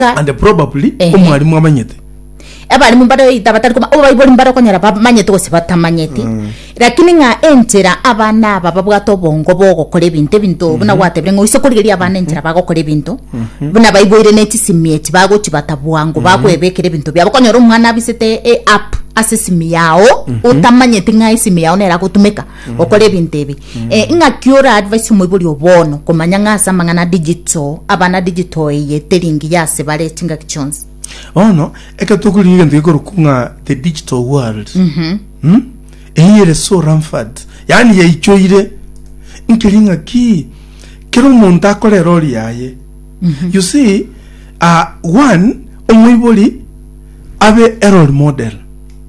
Ka- and probably Ehe. omwarimu amanyete abarimu mbare oita batari koma obo baibori mbare okonyora bamanyete gose batamanyeti lakini ng'a enchera abana aba babwate obongo bogokora ebinto ebinto buna gwatebire ng'a oise korigeria abana enchera bagokora ebinto buna baiboire ne chisimi echi bagochibata bwango bakwebekera ebinto biabo okonyora omwana abisete e app ase esimi yao otamanyeti ng'a esimi yao neragotumeka gokora ebinto ebi Eh, ng'aki ora advice omoibori o bono komanya ng'a ase amang'ana digital abana digital eye teri engiya ase bare chingaki chionsi bono eke tokorigia egento gekorokwa ng'a the digital world Hmm? eye ere so rampant yaani yaichoire nkeri ng'aki kera omonto akore erori yaye you see ah, one omoibori abe erori model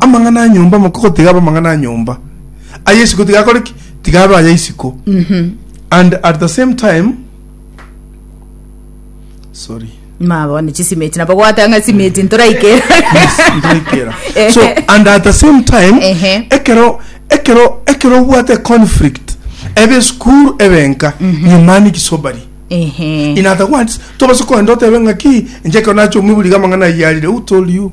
amang'ana a nyomba amako gotiga abe amang'ana a nyomba aya isiko tiga akore ki tiga abe aya isiko and at the same time sorry mabone chisimeti nabo gwatanga simeti ntoraikera Ntoraikera. Eh. so and at the same time Ehe. ekero ekero ekero obwate conflict ebe school ebenka nyumani kisobari ehe in other words tobase koenda otebe ng'aki inche ekero nache omwiburi iga amang'ana ayarire who told you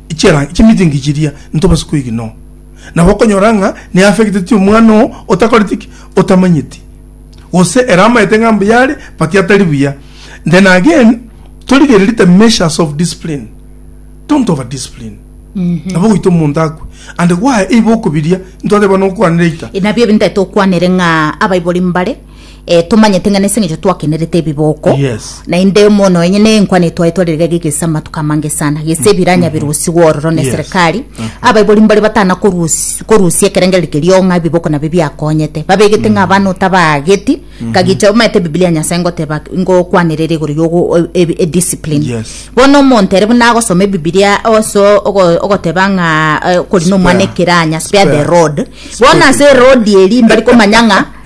chi'erangi chi'emitingi chiria ntobase kwegena oo. Na bokonyora ng'a neafecteti omwana oo otakoreti ki? Otamanyeti. Gose ere amaete ng'a mbuya are but atari buya. Then again, torigererie the measures of discipline. Don't over discipline. Nabo goita omonto akwe. And gwaye eiba okobiria, ntwateba nokwanera eita. Nabio ebinto etokwanere ng'a abaibori mbare eh, tomanyete ng'a nese ng'echo twakenerete ebiboko Yes. naende mono enye ne enkwana etwaye twarerega egegesa amatuko amange sana gese ebiranya birusi gwororo ne Yes. serikali abaibori mbare batana korusi- korusia ekerengereri kerio ng'a ebiboko nabio biakonyete babegete ng'a abana otabaageti kagicha omanyete ebibilia ya nyasae ngoteba ngokwanerera igoro yogo e- e- ediscipline Yes. bono omonto ere buna agosoma ebibilia oso ogo- ogoteba ng'a eh, kori nomwana Spare. ekeranya spare the Spare. road bono ase erodi eri mbari komanya ng'a